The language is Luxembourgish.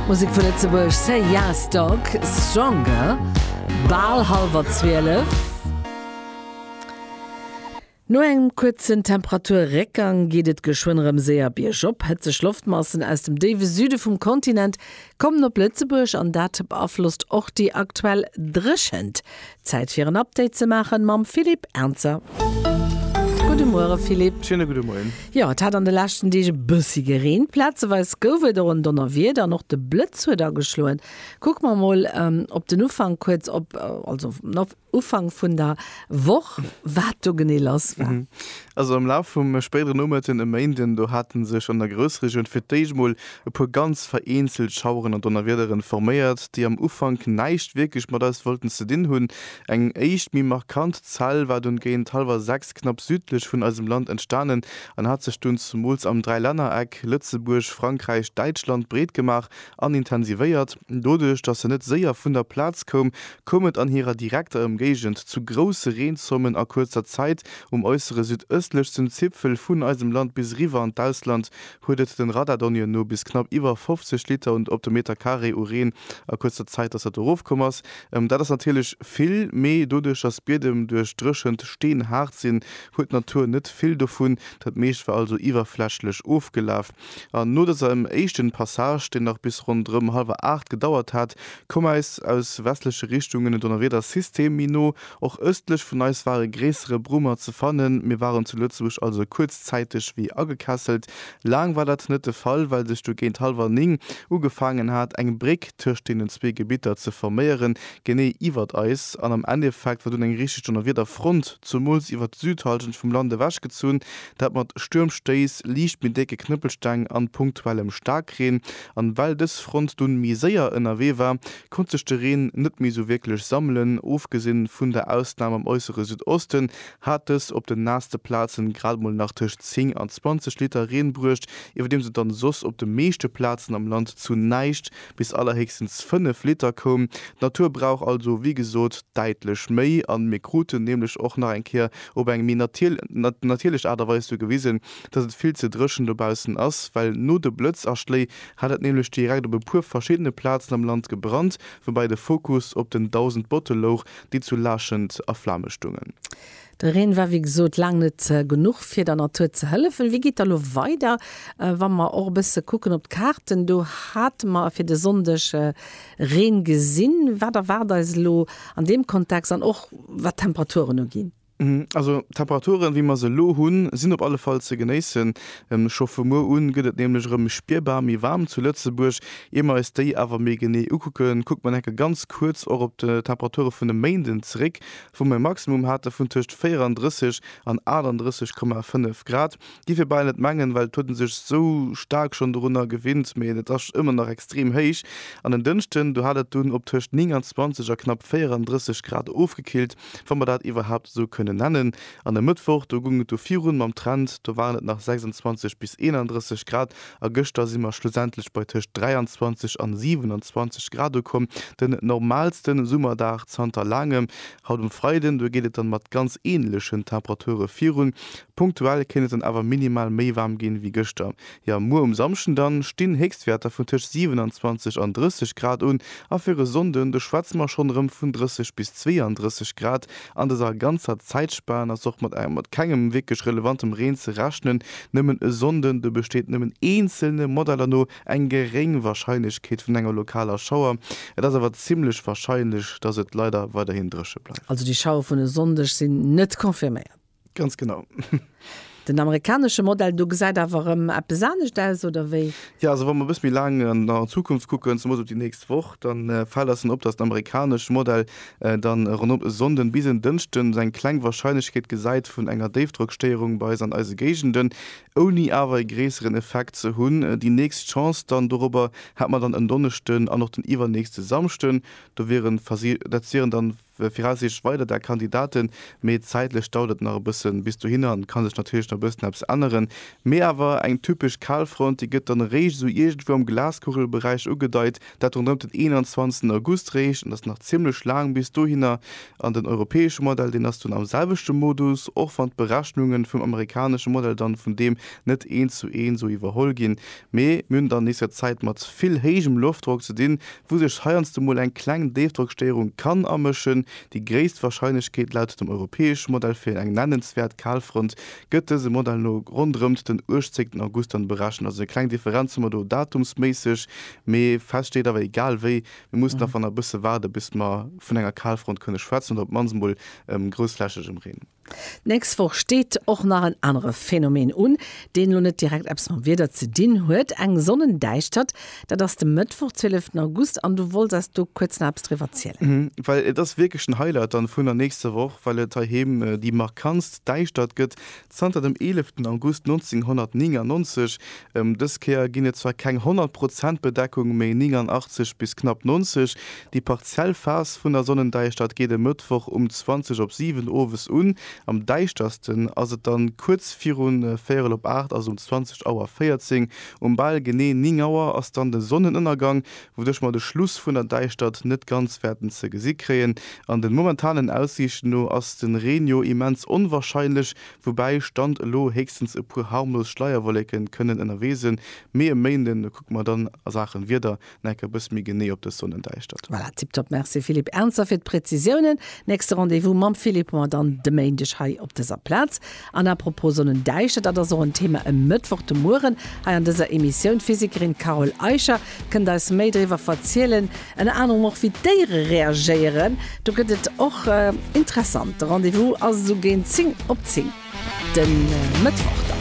Musek vu Lëtzebuerg, Say Yas Dog, Stronger, bal hallwer 12. No engem kuerzen Temperaturréckgang geet et geschwënn erëm séier biergop. Hëtzeg Loftmassen aus dem déiwe Süde vum Kontinent kommen op Lëtzebuerg an dat beaflosst och déi aktuell Dréchent. Zäit fir en Update ze maachen mam Philippe Ernzer. Gudde Muere Philippe. Schéine gudde Moien. Jo, et hat an de leschten Deeg e bëssi gereent. Plazeweis gouf et och en Donnerwieder an och de Blëtz huet ageschloen. Kucke mer mol op den Ufank kuerz op, also op Ufank vun der Woch, wat do genee lass war. Also am Laf vum spéidere Nomëtten e Méinden, do hate sech an der Groussregioun fir d'éischt mol e puer ganz vereenzelt Schaueren an Donnerwiederen forméiert, déi am Ufank näischt wierklech mat eis wollten ze dinn hunn. Eng éischt méi markant Zell war dunn géint hallwer 6 knapp südlech vun eisem Land entstanen an hat sech dunn zumools am Dräilännereck Lëtzebuerg, Frankräich, Däitschland breet gemaach an intensivéiert. Doduerch, datt se net séier vun der Plaz koum, koum et an hirer direkter Ëmgéigend zu grousse Reenzommen a kuerzer Zäit um äussere südëstlechsten Zipfel vun eisem Land bis eriwwer an d'Ausland, huet et den Radardonniën no bis knapp iwwer 50 Liter und op de Meter Carré u Reen a kuerzer Zäit, datt dat erofkomm ass. Dat ass natierlech vill, mee doduerch, datt d'Biedem duerch d'Dréchent steenhaart sinn, huet d'Natur net vill dovun. Dat meescht war also iwwerflächlech ofgelaf. An no dësem éischten Passage, deen nach bis ronderëm hallwer aacht gedauert hat, koum äis aus westleche Richtungen en Donnerwiedersystem méi no, Och östlech vun eis war e gréissere Brummer ze fannen. Mir waren zu Lëtzebuerg also kuerzzäiteg wéi agekesselt. Laang war dat net de Fall, well sech du géint hallwer 9 ugefaangen hat, eng Bréck tëscht deenen zwee Gebitter ze forméieren, genee iwwert eis. An am Endeffekt war dunn eng richteg Donnerwiederfront, zumools iwwert d'Südhallschent vum Land ewechgezunn, dat mat Stuermstéiss, liicht méi décke Knëppelsteng an punktuellem Staarkreen. An well dës Front dunn méi séier ënnerwee war, konnt sech de Reen net méi sou wierklech sammelen. Ofgesinn vun der Ausnam am äussere Südosten hat dës op den naasste Plazen grad mol nach tëscht 10 an 20 Liter Reen bruecht, iwwerdeems et dann soss op de meeschte Plazen am Land zu näischt bis allerhéchstens 5 Liter koum. D'Natur brauch also wéi gesot däitlech méi an mir kruten nämlech och nach eng Kéier op eng méi natierlech Aart a Weis du gewisen, dass et vill ze dréchen dobaussen ass, well no de Blëtzaschléi hat et nämlech direkt op e puer verschiddene Plazen am Land gebrannt, woubäi de Fokus op den 1000 Botte louch, déi zu Laachend a Flame stungen. De Reen war wéi gesot laang net genuch fir der Natur ze hëllefen. Wéi geet da lo weider? Wa mer och e bësse kucken op d'Kaarten, do hate mer fir de Sonndeg Reen gesinn. Wat erwaart eis elo an deem Kontext an och wat d'Temperaturen uginn? Also d'Temperaturen, wéi mer se elo hunn, sinn op alle Fall ze genéissen. Scho vu muer un gëtt et nämlech erëm spierbar méi waarm zu Lëtzebuerg. Ier mer eis déi awer méi genee ukucken, kucke mer nach eng Kéier ganz kuerz och op d'Temperature vun e Méinden zeréck, wou mer e Maximum hate vun tëscht 34 an 38,5 Grad. Dierf ee bal net mengen, well et huet ee sech esou staark schonn dorunner gewinnt, mee et ass ëmmer nach extrem héich. An en Dënschden, do hat et dunn op tëscht 29 a knapp 34 Grad ofgekillt. wa mer dat iwwerhaapt esou kënnen nennen. An e Mëttwoch, do goung et du virun mam Trend, do waren et nach 26 bis 31 Grad a gëschter si mer schlussendlech bei tëscht 23 an 27 Grad ukomm, den normaalste Summerdag zanter laangem. Haut um Freiden, do geet et dann mat ganz änlechen Temperature virun. Punktuell kéint et dann awer minimal méi waarm ginn, wéi gëschter. Jo, muer um Samschden dann stinn Héchstwäerter vun tëscht 27 an 30 Grad un a fir e Sonnden, do schwätze mer schonn erëm vun 30 bis 32 Grad. An dëser ganzer Zäitspan ass och mat mat kengem wierklech relevantem Reen ze rechnen, nëmmen e Sonnden. Do besteet nëmmen eenzelne Modeller no eng geréng Warscheinlechkeet vun enger lokaler Schauer. Et ass awer zimmlech warscheinlech, dass et leider weiderhin dréche bleift. Also déi Schauere vun e Sonndeg sinn net confirméiert. Ganz genau. Den amerikanesche Modell do gesäit awer erëm eppes anescht aus, oder wéi? Jo, also wa mer e bësse méi laang an d'Zukunft kucken, zemoos op déi nächst Woch, da fält eis dann op, datt den amerikanesche Modell da ronderëm e Sonnden bis en Dënschden esou eng kleng Warscheinlechkeet gesäit vun enger Déifdrockstéierung bei eis an eise Géigenden, ouni awer e gréisseren Effekt ze hunn. Déi nächst Chance dann dorobber hätte mer dann en Donneschden an och den iwwernächste Samschden. Do wieren, dat wieren dann Viraussiichtlech weider da Kandidaten, mee zäitlech dauert et nach e bëssen bis dohinner an et ka sech natierlech nach e bëssen eppes änneren. Mee awer eng typesch Kalfront, déi gëtt dann eréischt esou iergendwou am Glaskugelberäich ugedeit, dat ronderëmt den 21 August réischt an et ass nach zimmlech laang bis dohinner. An den europäesche Modell, deen ass dunn am selwechte Modus, och wann d'Berechnunge vum amerikanesche Modell dann vun deem net eent zu eent esou iwwerholl ginn. Mee mir hunn et an nächster Zäit mat vill héijem Loftdrock ze dinn, wou sech heiansdo mol eng kleng Déifdrockstéierung kann amëschen. Déi gréisst Warscheinlechkeet laut dem europäesche Modell fir eng nennenswäert Kalfront gëtt dësem Modell no ronderëmt den 18 August dann berechent. Also eng kleng Differenz hu mer do datumsméisseg, mee fest steet awer, egal wéi, mir mussen awer nach e bësse waarde bis mer vun enger Kalfront kënne schwätzen oder op d'mannst mol grousflächegem Reen. D'nächst Woch steet och nach en anere Phänomen un, deen elo net direkt eppes mam Wieder ze dinn huet, eng Sonnendäischtert. Dat ass de Mëttwoch, 12 August, an du wolls eis do kuerz nach eppes driwwer zielen. Well et ass wierklech den Highlight dann vun der nächster Woch, well et heiheem déi markantst Däischtert gëtt zanter dem 11 August 1999. Dës Kéier ginn et zwar keng 100 Prozent Bedeckung, mee 89 bis knapp 90, Déi partiell Phas vun der Sonnendäischtert geet e Mëttwoch um 20 op 7 owes un. Am däischtersten ass et dann kuerz virun véierel op 8, also um 20 Auer 14. Um bal genee 9 Auer ass dann de Sonnenënnergang, wouduerch mer de Schluss vun der Däischtert net ganz wäerten ze gesi kréien. An den momentanen Aussiichten no ass den Reen jo immens onwarscheinlech, woubäi Stand elo héchstens e puer harmlos Schleierwolleken kënnen ënnerwee sen. Mee e Méinden kucke mer dann a Saachen Wieder Necker bësse méi genee op dës Sonnendäischtert. Voilà, tiptop, Merci Philippe Ernzer fir d'Präzisiounen. Nächste Rendez-vous mam Philippe hu mer dann de Méindeg hei op dëser Plaz. An à propos Sonnendäischtert, dat ass och en Thema e Mëttwoch de Mueren hei an dëser Emissioun. D'Physikerin Carole Eicher kënnt eis méi driwwer verzielen, ënner anerem och wéi d'Déiere reagéieren. Do gëtt et och interessant. De Rendez-vous ass esou géint 10 op 10 de Mëttwoch dann.